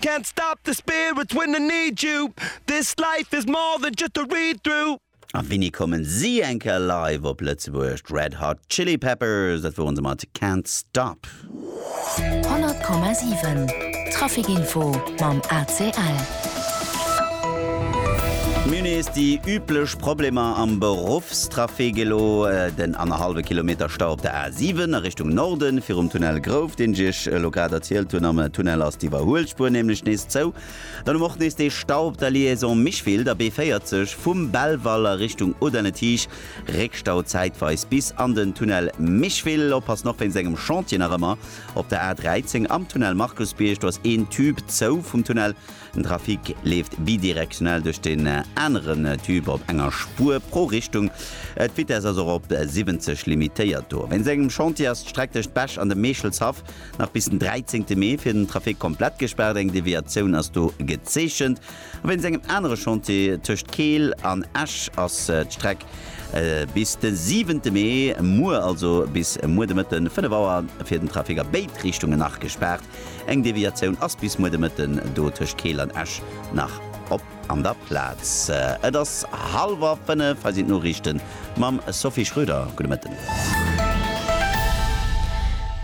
Can't stop the spirit when I need you This life is more than just a read through. A wéini kommen si eng Kéier live op Lëtzebuerg? D'Red Hot Chili Peppers, dat woren se mat Can't Stop. 100,7 Trafic Info mam ACL. Mir hunn nees déi üblech Problemer am Beruffstrafic. Elo den annerhallwe Kilometer Stau op der A7. 7 a Richtung Norden, virum Tunnel Grouve, deen ech Iech elo grad erzielt hunn. Am Tunnel ass d'Iwwerhuelspuer nämlech nees zou. Dann hu mer och nees dee Stau op der Liaison Micheville, der B40, vum Belval a Richtung Audun-le-Tiche. Réckstau zäitweis bis an den Tunnel Micheville. Oppassen och wéinst engem Chantier nach ëmmer op der A13 am Tunnel Markusbierg. Do ass een Tube zou vum Tunnel Den Trafic leeft bidirektionell duerch den aneren Typ op enger Spuer pro Richtung. D'Vitess ass och op 70 limitéiert. Do wéinst engem Chantier ass d'Streck tëscht Bech an dem Meechelshaff nach bis den 13 Mee fir den Trafic komplett gespaart. Eng Deviatioun ass do gezeechent. A wéinst engem anere Chantier tëscht Keel an Esch ass d'Streck bis de 7 Mee, muer, also bis muer de Mëtten 5 Auer, fir den Trafic a béid Richtungen nach gespaart. Eng Deviatioun ass bis muer de Mëtten do tëscht Keel an Esch nach op an der Plaz. Et ass hallwer 5, hei sinn d'Noriichten mam Sophie Schröder. Gudde Mëtten.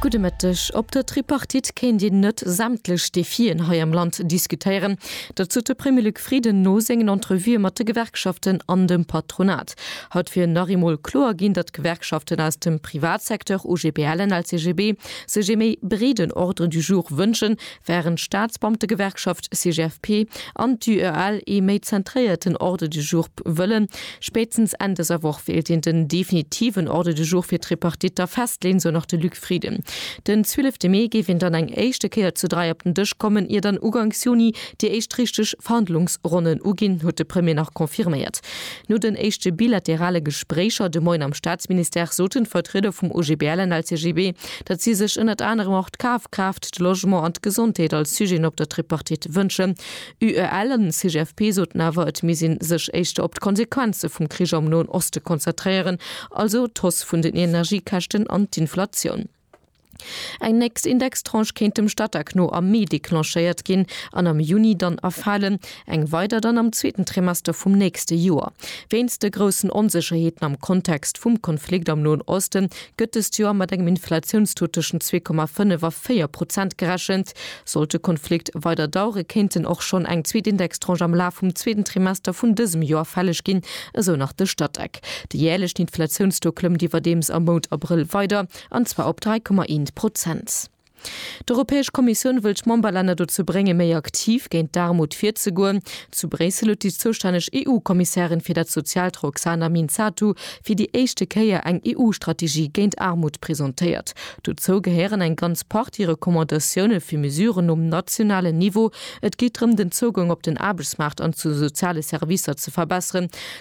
Gudde Mëtteg. Op der Tripartite kéint een net sämtlech Defien hei am Land diskutéieren. Dat sot de Premier Luc Frieden no sengen Entrevuë mat de Gewerkschaften an dem Patronat. Haut wier nach eemol kloer ginn, datt d'Gewerkschaften aus dem Privatsecteur, OGBL an LCGB, sech ee méi breeden Ordre du jour wënschen, während d'Staatsbeamtegewerkschaft CGFP an d'UEL ee méi zentréierten Ordre du jour wëllen. Spéitstens Enn dëser Woch wéilt een den definitiven Ordre du jour fir d'Tripartite da festleeën, sou nach de Luc Frieden. Den zwielefte Mee géif een dann eng éischte Kéier zu dräi op den Dësch kommen, ier dann uganks Juni déi éischt richteg Verhandlungsronnen uginn, huet de Premier nach confirméiert. No den éischte bilaterale Gespréicher de Moien am Staatsministère soten d'Vertrieder vum OGBL an LCGB, datt si sech ënnert anerem och d'Kafkraaft, de Logement an d'Gesondheet als Sujeten op der Tripartite wënschen. UEL an CGFP soten awer, et misst ee sech éischter op d'Konsequenze vum Krich am Noen Oste konzertréieren, also d'Hausse vun den Energiekäschten an d'Inflatioun. Eng nächst Indextranche kéint dem Statec no am Mee declenchéiert ginn an am Juni dann erfalen, eng weider dann am zweeten Trimester vum nächste Joer. Wéinst de groussen Onsécherheeten am Kontext vum Konflikt am Noen Osten gëtt dëst Joer mat engem Inflatiounstaux tëschent zwee Komma fënnef a véier Prozent gerechent. Sollt de Konflikt weider dauere kéinten och schonn eng zweet Indextranche am Laf vum zweeten Trimester vun dësem Joer fälleg ginn, esou nach de Statec. Déi jäerlecht Inflatiounstaux klëmmt iwwerdeems am Mount Abrëll weider, an zwar op 3,1 Prozent. D'Europäesch Kommissioun wëll d'Memberlänner dozou bréngen, méi aktiv géint d'Aarmut virzegoen. Zu Bréissel huet déi zoustänneg EU-Kommissärin fir dat Soziaalt Roxana Minzatu fir déi éischte Kéier eng EU-Strategie géint Aarmut presentéiert. Dozou gehéieren eng ganz Partie Recommandatioune fir Mesuren nom nationalen Niveau. Et geet drëm, den Zougang op den Aarbechtsmaart an zu soziale Servicer ze verbesseren.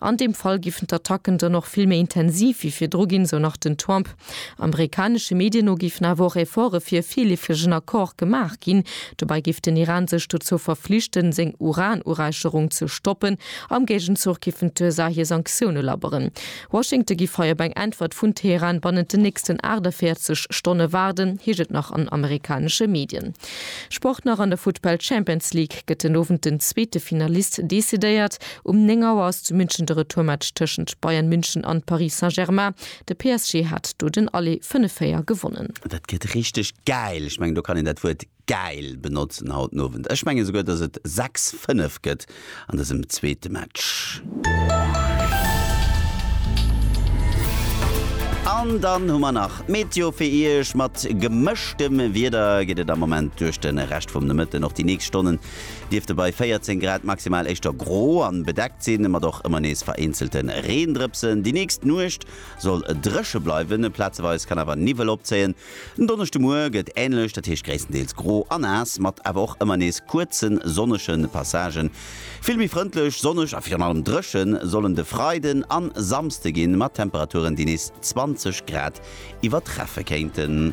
An deem Fall giffen d'Attacken dann och vill méi intensiv wéi virdru ginn, sou nach den Trump. Amerikanesche Medien no géifen awer och Efforte fir e virleefegen Accord gemaach ginn. Dobäi géif den Iran sech dozou verflichten, seng Uran-Uräicherung ze stoppen. Am Géigenzuch giffen d'USA hir Sanktioune labberen. Washington giff hei op eng Äntwert vun Teheran bannent den nächsten 48 Stonne waarden, heescht et nach an amerikanesche Medien. Sport nach, An der Futtball-Champions League gëtt den Owend den zweete Finalist decidéiert. Um 9 Auer ass zu München de Retourmatch tëschent Bayern München an Paris Saint-Germain. De PSG hat do den Aller 5-4 gewonnen. Dat gëtt richteg gäil. Ech mengen, do kann een dat Wuert gäil benotzen haut den Owend. Ech menge souguer, dass et 6, 5 gëtt an dësem zweete Match. An dann hu mer nach d'Meteo fir Iech. Mat gemëschtem Wieder geet et am Moment duerch de Rescht vum Nomëtten. Och déi nächst Stonnen dierfte bei 14 Grad maximal éischter gro an bedeckt sinn, mat och ëmmer nees vereenzelte Reendrëpsen. Déi nächst Nuecht soll dréche bleiwen, plazeweis kann awer Niwwel opzéien. Den Donneschdemuer gëtt änlech, dat heescht gréisstendeels gro a naass, mat awer och ëmmer nees kuerze sonnege Passagen. Vill méi frëndlech, sonneg a virun allem dréche sollen de Freiden a Samsde ginn, mat Temperaturen, déi nees 20 Grad iwwertreffe kéinten.